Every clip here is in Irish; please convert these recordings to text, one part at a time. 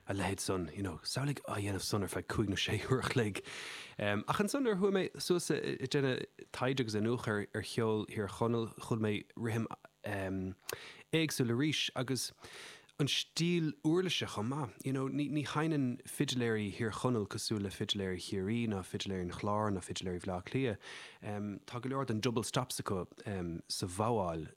a leithéid san, you know, samhlaigh á dhéanamh san ar feadh cúig nó sé uair a chloig. Ach ansan nuair a chuaigh mé suas ag déanamh taighde agus iniúchadh ar cheol Thír Chonaill chuala mé rithim éagsúil arís agus an stíl uirlise chomh maith. You know, ní ní sheinneann fidiléirí Thír Chonaill cosúil le fidiléirí Chiarraí ná fidiléirí an Chláir ná fidiléirí Bhleá Cliath. Tá go leor den double stops acu sa bhogháil.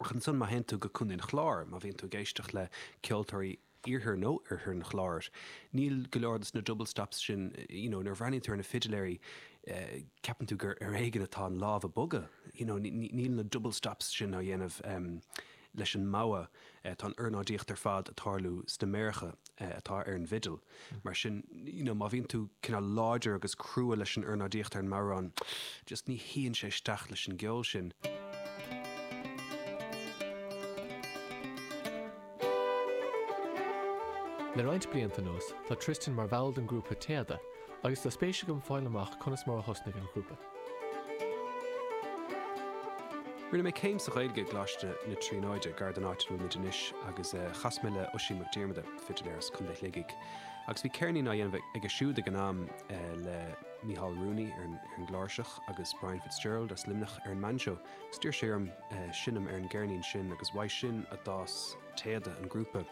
Ach ansan má théann tú go Contae an Chláir, má bhíonn tú ag éisteacht le ceoltóirí Iarthar nó Oirthear an Chláir, níl go leor dos na double stops sin, you know, nuair a bhreathnaíonn tú ar na fidiléirí ceapann tú gur ar éigin atá an lámh ag bogadh, you know, níl na double stops sin á dhéanamh leis an mbogha. eh tá an ornáidíocht ar fad ag tarlú sna méaracha eh atá ar an bhfidil mar sin you know má bhíonn tú cineál láidir agus crua leis an ornáidíocht ar an mbodhrán just ní shuíonn sé isteach leis an gceol sin. Le roinnt blianta anuas tá Tristan mar bhall den grúpa Téada agus tá spéis agam fáil amach conas mar a thosnaigh an grúpa. Rinne mé céim sa Ghaeilge i gColáiste na Tríonóide, gar don áit a bhfuil muid anois, agus chas mé le Oisín Mac Diarmada, fidiléir as Contae Shligigh, agus bhí ceirnín á dhéanamh aige siúd ag an am le Michael Rooney ar an gcláirseach agus Brian Fitzgerald as Luimneach ar an mbainseó, agus d'iarr sé orm seinm ar an gceirnín sin agus uaidh sin a d'fhás Téada an grúpa.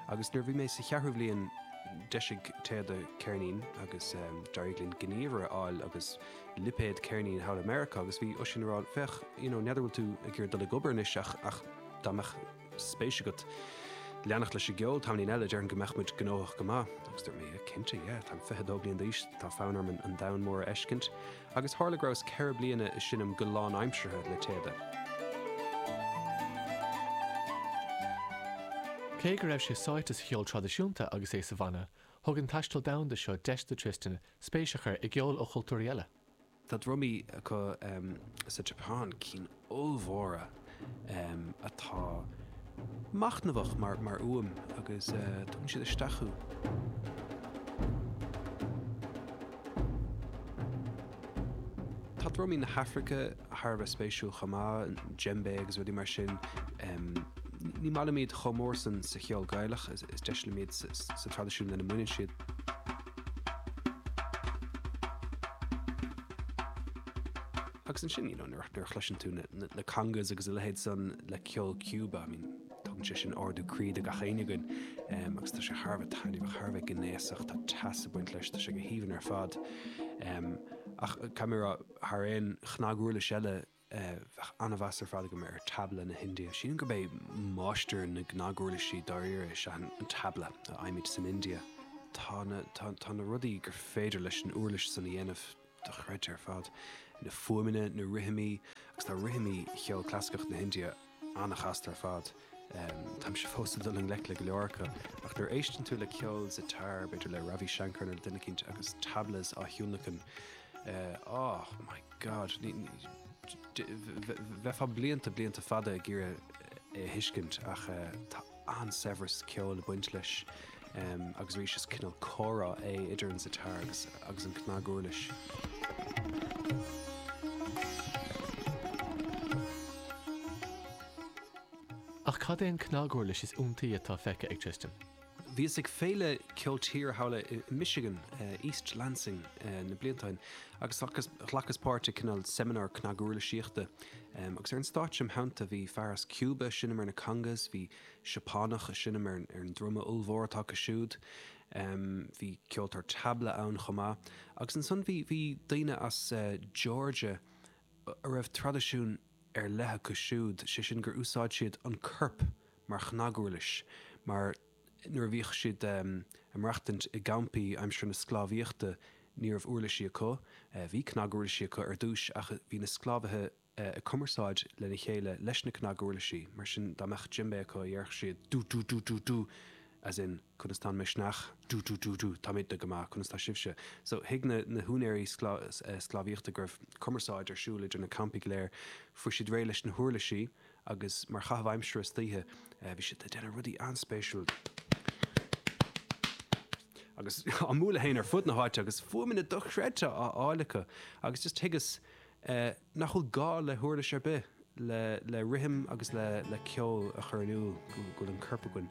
Agus nuair a bhí mé sa cheathrú bhliain d'eisigh Téada ceirnín agus d'éirigh linn gníomhaire a fháil agus lipéad ceirníní thall i Meiriceá agus bhí Oisín ag rá, 'Féach, you know, n'fheadar an bhfuil tú ag iarraidh dul ag obair anois ach, ach dá mbeadh spéis agat leanacht leis an gceol tamaillín eile déarfainn go mbeadh muid gnóthach go maith. Agus dúirt mé, 'Yeah, cinnte, yeah, táim fiche dó bliain d'aois, tá fonn orm an domhan mór a fheiscint. Agus tharla go rabhas ceithre bliana ag seinm go lánaimseartha le Téada. Cé go raibh sé sáite sa cheol traidisiúnta agus é sa bhanna, thug an taisteal domhanda seo deis do Tristan spéis a chur i gceol ó chultúirí eile. Tá drumaí acu sa tSeapáin, cinn ollmhóra atá machnamhach mar fhuaim agus tugann siad isteach thú. Tá drumaí na hAfraice thar a bheith spéisiúil chomh maith, djembe agus rudaí mar sin. Ní maith liom iad chomh mór san sa cheol Gaelach, is deise liom iad sa traidisiún lena mbaineann siad. Agus ansin, you know, nuair a chloiseann tú na congas agus a leithéid san le ceol Chúba, I mean, tugann sé sin ardú croí do gach éinne againn agus tá sé thar a bheith taitneamhach, thar a bheith gnéasach, tá teas ag baint leis, tá sé go haoibhinn ar fad. Ach caithfidh mé a rá, thar aon chnaguirlis eile, bheadh an-mheas ar fad agam ar Tabla na hIndia. Sílim gurb é máistir na gcnaguirlisí dáiríre é seo, an Tabla a fhaighimid san India. Tá, tá na rudaí gur féidir leis an uirlis san a dhéanamh. dochreidte ar fad, na fuaimeanna, na rithimí, agus tá rithimí cheol clasaiceach na hIndia an-chasta ar fad. Táimse fós ag dul i ngleic le go leor acu, ach nuair a éisteann tú le ceol sitar, b'fhéidir le Ravi Shankar nó le duine eicínt agus tablas á thionlacan, oh my God, bheifeá blianta, blianta fada ag iarraidh é a thuiscint ach tá. an-saibhreas ceoil ag baint leis agus arís is cineál comhrá é idir an sitar agus an cnaguirlis. Ach cad é an cnaguirlis is iontaí atá feicthe ag Tristan? Bhíos ag Féile Ceol Tíre Shamhlach i Michigan, East Lansing, na blianta ó shin agus ghlacas páirt i cineál seimineár cnaguirlisíochta. Agus ar an stáitse im' theannta bhí fear as Cúba ag seinm ar na congas, bhí Seapánach ag seinm ar an druma ollmhór atá acu siúd, bhí ceoltóir tabla ann chomh maith. Agus ansan bhí daoine as Georgia a raibh traidisiún ar leith acu siúd, sé sin gur úsáid siad an corp mar chnaguirlis, mar nuair a bhíodh siad ag maireachtaint i gcampaí aimsir na sclábhaíochta ní raibh uirlisí acu, bhí cnaguirlisí acu ar dtúis ach bhí na sclábhaithe ag cumarsáid lena chéile leis na cnaguirlisí, mar sin dá mbeadh djembé acu déarfadh siad du du du du du as in conas tá an misneach, du du du du táimidne go maith, conas tá sibhse? So thuig na na húinéirí sclábhaíochta go raibh cumarsáid ar siúl idir na campaí go léir. Fuair siad réidh leis na huirlisí. agus mar chaitheamh aimsire istoíche bhí siad a' déanamh rudaí an-spéisiúil agus á mbualadh fhéin ar fud na háite agus fuaimeanna dochreidte á fháil acu agus just thuigeas nach bhfuil gá le huirlis ar bith le rithim agus le ceol a chur in iúl go bhfuil an corp againn.